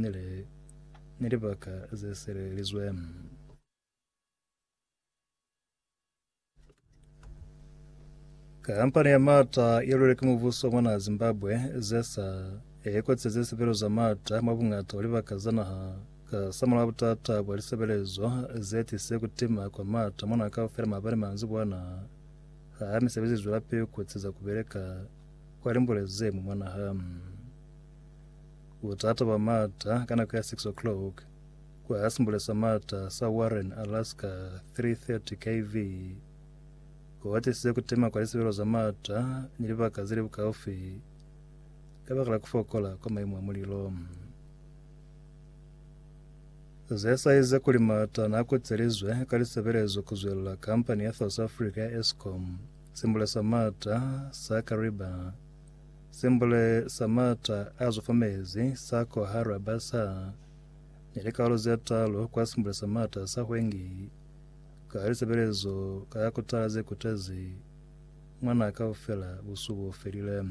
Ni li, Ni libaka ze silelizwe. Kampani ya maata ye lwelwe ki mubuso mwa naha Zimbabwe, ZESA, e kotisezize lisebelezo za maata mwa buñata bwa libaka za naha ka samula wa butata bwa lisebelezo ze tisize ku tima kwa maata mwa naha kaufela maabani manzibwana ha misebezi i zwelapili ku kotisa ku beleka kwa limbule ze ñwi mwa naha. Butata bwa Marta ka nako ya 6 o'clock ku Hasmbles sa Marta sa Warren, Alaska, 3:30 kV, ku atisize ku tema kwa lisebelo za Marta ni libaka ze li bukaufi kabakala ku fokola kwa maimu a mulilo. Ze sazize kuli Marta na kutselizwe ka lisebelezo ku zwelela kampani ya South Africa ya Eskom, Simbule sa Marta sa Kariba, Simbule sa m'ata a zufumezi sa Koha Raba sa ni likalolo ze talu kwa simbule sa m'ata sa Hwengi ka lisebelezo ka ya kutala ze kutezi mwa naha kaufela busuku bo felile.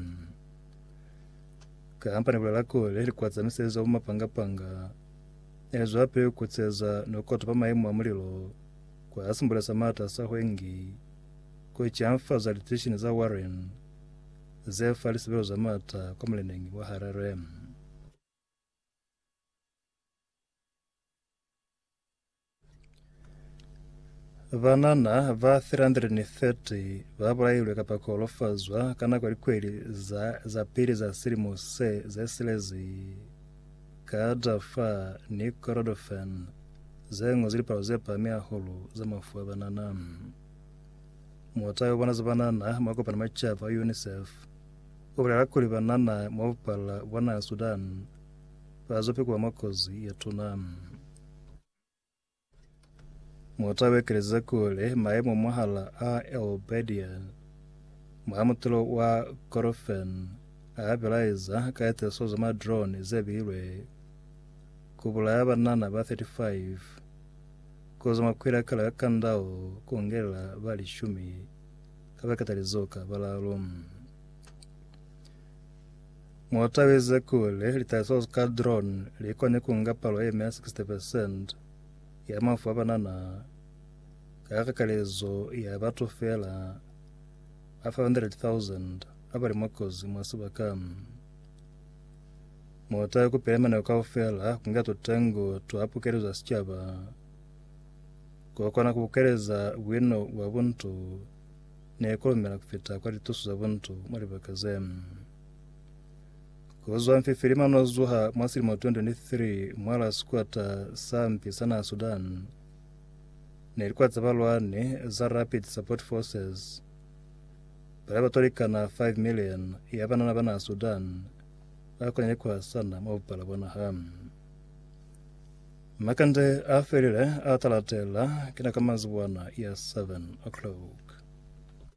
Kampani i bulela kuli likuwa tsa misebezi za bumapanga-panga ne li zwelapili ku kutseza ni ku kotopa maimu a mulilo kwa simbule sa m'ata sa Hwengi ku canfaza litishini za Warren ze fa lisebelo za maata kwa muleneñi wa Harare. Banana ba 330 ba bulailwe kapa ku holofazwa ka nako ya likweli za, za pili za silimo se ze silezi ka Darfur ni Kordofan, ze ñozwi lipalo ze pahami hahulu za mafu a banana. Muta yo bona za banana mwa kopana macaba yo UNICEF o bulela kuli banana mwa bupala bwa naha Sudan ba zo pikuwa mwa kozi ye tuna. Muta o ekeleza kuli maemo mwahala a El Bedia mwa mutelo wa Korofen a bilaeza ka tiriso za ma drone ze bilwe ku bulaya banana ba 35 Kozo makwela kala ka kandao kongelela ba lishumi kaba katalizo ka balalo. Mwatabeze kule litaliso ka drone likone kunga palo eme ya 60% ya mafu a banana ka kakalezo ya batu fela ba 500,000 abali mwakozi mwa sebaka. Muta ku pela manako kaufela ku nga tutengo twa pukelo za sicaba, ku kona ku bukeleza buino bwa buntu ni ku lumela ku fita kwa litusu za buntu mwa libaka ze. Ku zwa mfifilima no zuha mwa silimo 2023 mwa la sikwata sa mpi sa naha Sudan, ne likwa za balwani za Rapid Support Forces, Bana ba tolekana 5 million ya banana ba naha Sudan ba konile ku hasana mwa bupala bwa naha. Makande a felile a ta latela kina ka manzibwana ya 7 o'clock.